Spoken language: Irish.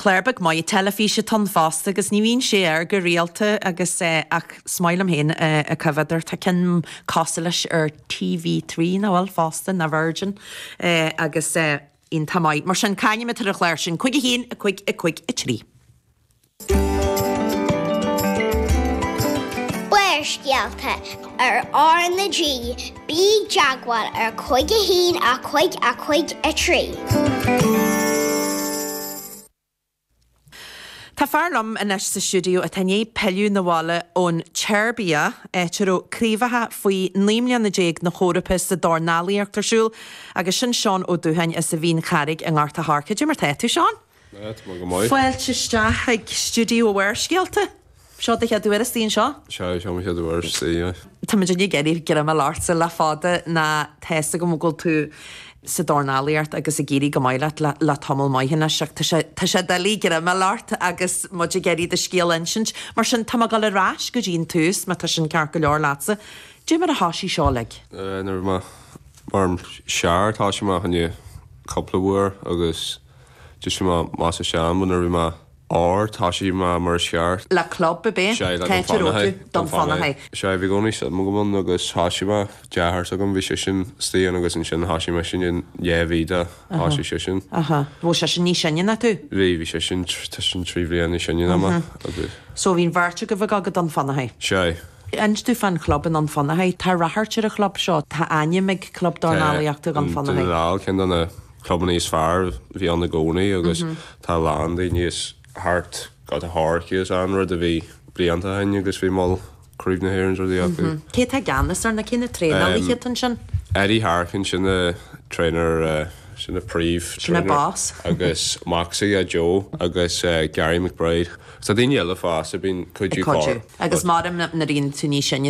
Clár beag maith teilifíse atá ann fosta agus ní bhíonn sé air go rialta agus eh, ach is maith liom féin é a choimhéad ar, tá ceann cosúil leis ar TV three nach bhfuil fosta, nó Virgin eh, agus eh, iontach maith. Mar sin, c'ainm atá ar an chlár sin, cúig a haon, a cúig, a cúig a trí. Barrscéalta ar RnaG, Bí i dteagmháil ar chúig a haon a cúig a cúig a trí. Tá fear liom anois sa stiúideo atá i ndiaidh pilleadh 'na bhaile ón tSeirbia, áit a raibh craobhacha faoi naoi mbliana déag na hEorpa sa dornálaíocht ar siúl, agus sin Seán Ó Dúcháin as an Mhín Charraig i nGort a' Choirce. Cad é mar tá tú, Seán! Fáilte isteach ag Stiúideo Bharrscéalta. Seo do chéad uair istigh anseo. Sea, seo mo chéad uair istigh ann é. Tá muidinne ag iarraidh greim a fháil ortsa le fada nó tá a fhios agam go bhfuil tú sa dornálaíocht agus ag éirí go maith leat le tamall maith anois ach tá sé doiligh greim a fháil ort agus muid ag iarraidh do scéal a insint mar sin tá mé ag dul ar ais go dtí an tús má tá sin ceart go leor leatsa. Cad é mar a thoisigh seo uilig. Nuair a bhí mé mar sear tá sé amach i ndiaidh cúpla uair agus. Thoisigh mé, mar sa seanbhan ar bith mar, or Thoisigh mé, mar is cheart. le club ar bith, Sea, le Don Pheter Fanahay, O'Toole, Dunfanaghy. Dunfanaghy. Sea, bhí i gcónaí suim agam ann agus thoisigh mo dheartháir s'agam, bhí seisean istigh ann agus ansin thosaigh mise ansin dhá mhí i ndiaidh thosaigh seisean. Aha. Bhfuil seisean níos sine ná tú? Bhí, bhí seisean, tr- tá seisean trí bhliain níos sine ná mé agus. So bhí'n bheirt agaibh ag ag Dunfanaghy? Sea. Inis domh fán chlub i nDún Fionnachaidh. Tá radharc ar an chlub seo. Tá ainm ag club dornálaíochta Dhún Fionnachaidh. Tá ceann de na clubanna is fearr a bhí ann i gcónaí agus tá a lán daoine as thart Gort a' Choirce ann, rud a bhí blianta ó shin agus bhí moll Craobh na hÉireann is rudaí acu. Cé atá i gceannas ar na, cé na traenálaithe atá ansin? Eddie Harkin, sin an trainer, sin an príomh trainer. Sin an boss. Agus Moxey, Joe, agus Gary McBride. So daoine eile fosta a bhíonn ag cuidiú. Cuidiú. Agus mairim nuair a éiríonn tú níos sine.